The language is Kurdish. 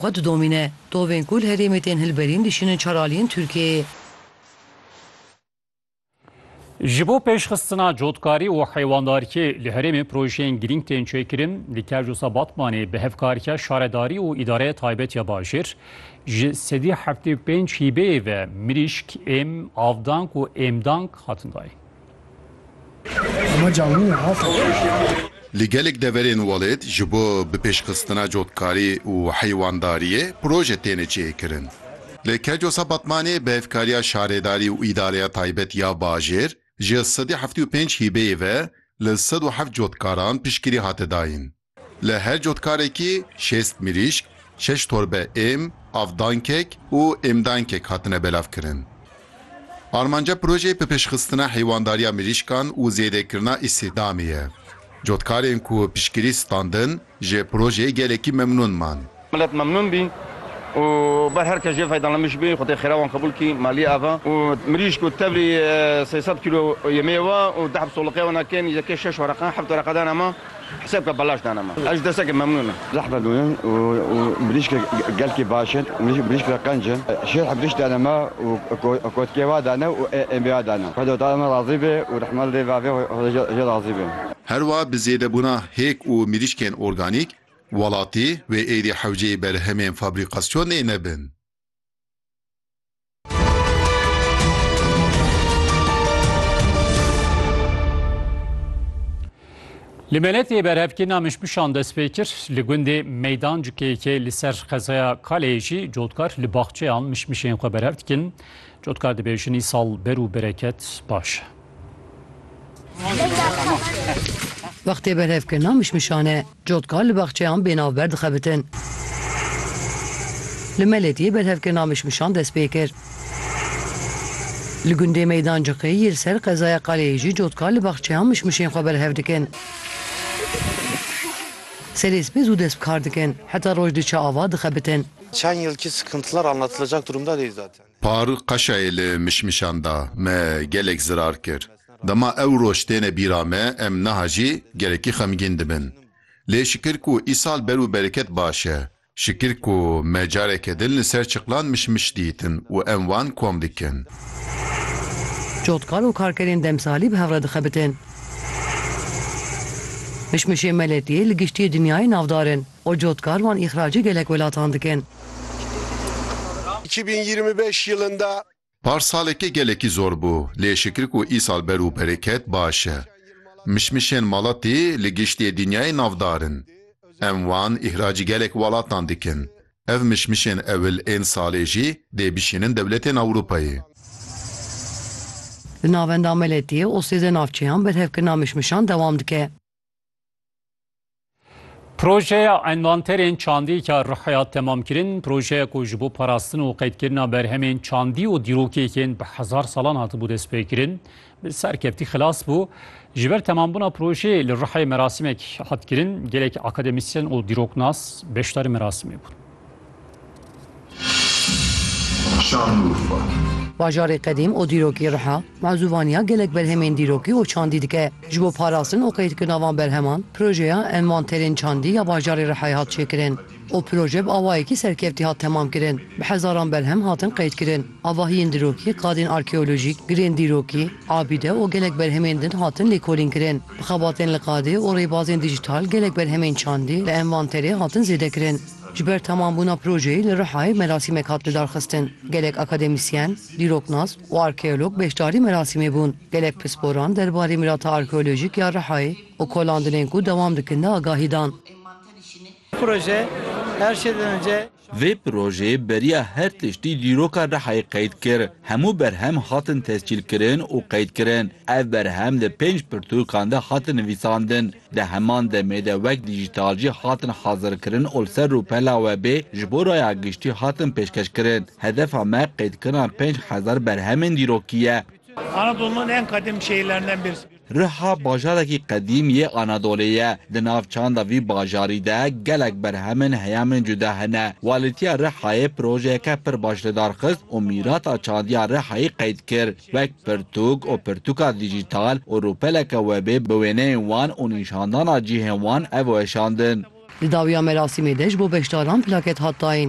Xwe didomîne. Tovên ku li herêmê tên hilberîn dişînin çar aliyên Tirkiyeyê. Ji bo pêşxistina cotkarî û heywandarkê li herêmê projeyên girîng tên çêkirin. Li Kerjûs a Batmanê bi hevkariya şaredarî û îdareya taybet ya bajêr ji sedî heftê û pênc hîbeyê ve mirîşk, êm, avdank û êmdank hatin dayîn. Li gelek deverên welêt ji bo bipêşxistina cotkarî û heywandariyê proje têne çêkirin. Li Kercosa Batmanê bi hevkariya Şaredarî û Îdareya Taybet ya Bajêr ji sedî heftê û pênc hîbeyê ve li sed û heft cotkaran piştgirî hate dayîn. Li her cotkarekî şêst mirîşk, şeş torbe êm, avdankek û êmdankek hatine belavkirin. Armanca projeyê bipêşxistina heywandarîya mirîşkan û zêdekirina îstîhdamê ye. Cotkarên ku piştgirî standin ji projeyê gelekî memnûn man. Milet memnûn bî û ber her kes jê feydalenmiş bî, xwedê xêra wan qebûl kî, Maliyê ava û mirîşk û tevlî sey sed kîlo yemeyê wa û deh bsoliqeya wana kêm yekê şeş wereqa, heft wereqa dana ma, hisêb ke belaş dana ma. Ez ji destekê memnûn im. Zehmet mûnin û mirîşk gelkî baş in, mirîşk re qenc in. Şêr hebirîşk dana ma û kotkê wa dana û êmbê wa dana. Xweda taala me razî bê û rehman lê vavê xweda jê razî bê. Herwiha bi zêdebûna hêk û mirîşkên organîk, Welatî wê êdî hewceyê berhemên fabrîkasyonê nebin. Li Meletê berhevkirina mişmişan dest pê kir. Li gundê Meydan Cukeyekê li ser xezaya Kaleyê jî cotkar li baxçeyan mişmişên xwe berhev dikin. Cotkar dibe jinî sal ber û bereket baş. Wextê berhevkirina mişmişan e. Cotka li baxçeyan bênavber dixebitin. Li Meletiyê berhevkirina mişmişan dest pê kir. Li gundê Meydan Ciqî yê li ser qezaya Qaleyê jî cotka li baxçeyan mişmişên xwe berhev dikin. Serê sibê zû dest bi kar dikin. Heta roj diçe ava dixebitin. Par qeşayê li mişmişan da, me gelek zirar kir. Dema ew roj têne bîra me, em niha jî gelekî xemgîn dibin. Lê şikir ku îsal ber û bereket baş e. Şikir ku me careke din li ser çiqlan mişmiş dîtin û em wan kom dikin. Cotkan û karkerên demsalî bi hev re dixebitin. Mişmişên Meletiyê li giştî dinyayê navdar in. û cotkar wan îxracê gelek welatan dikin. Îki bin yirmi beş yilinde. Par saleke gelekî zor bû lê şikir ku îsal ber û bereket baş e. Mişmişên Malatî li giştî dinyayê navdar in. Em wan îxracî gelek welatan dikin. Ev mişmişên ewil ên salê jî dê bişînin dewletên Ewropayê. Li Navenda Meletiyê û sêzdeh navçeyan berhevkirina mişmişan dewam dike. Projeya envanterên çandî ka Rihya temam kirin, projeyek ku ji bo parastin û qeydkirina berhemên çandî û dîrokêkên bi hezar salan hatibû destpêkirin, bi serkeftî xilas bû. Ji ber temambûna projeyê li Rihayê merasîmek hat kirin, gelek akademîsyen û dîroknas beşdarî merasimê bûn. Şanlıurfa. Bajarê qedîm û dîrokî Riha mezûvaniya gelek berhemên dîrokî û çandî dike. Ji bo parastin û qeydkirina van berheman projeya envanterên çandî ya bajarê Rihayê hat çêkirin û proje bi awayekî serkeftî hat temamkirin. Bi hezaran berhem hatin qeydkirin. Avahiyên dirokî, qadên arkeolojîk, girên dîrokî, abîde û gelek berhemên din hatin lêkolînkirin. Bi xebatên li qadê û rêbazên dîjîtal gelek berhemên çandî li envanterê hatin zêdekirin. Ji ber temambûna projeyê li Rihayê merasîmek hat lidarxistin. Gelek akademîsyen, dîroknas û arkeolog beşdarî merasîmê bûn. Gelek pisporan derbarê mirata arkeolojîk ya Rihayê û kolandinên ku dewam dikin de agahî dan. Vê projeyê beriya her tiştî dîroka Rihayê qeyd kir. Hemû berhem hatin tescîlkirin û qeydkirin. Ev berhem li pênc pirtûkan de hatin nivîsandin. Di heman demê de wek dîjîtal jî hatin hazirkirin û li ser rûpela webê ji bo raya giştî hatin pêşkeşkirin. Hedefa me qeydkirina pênc hezar berhemên dîrokî ye. Riha bajarekî qedîm yê Anadolê ye. Di nav çanda vî bajarî de gelek berhemên heyamên cuda hene. Walîtiya Rihayê projeyeke pir baş li dar xist û mîrata çandiya Rihayê qeyd kir. Wek pirtûk û pirtûka dîjîtal û rûpeleke webê bi wêneyên wan û nîşandana cihên wan ev weşandin. Di dawiya merasîmê de ji bo beşdaran plaket hat dayîn.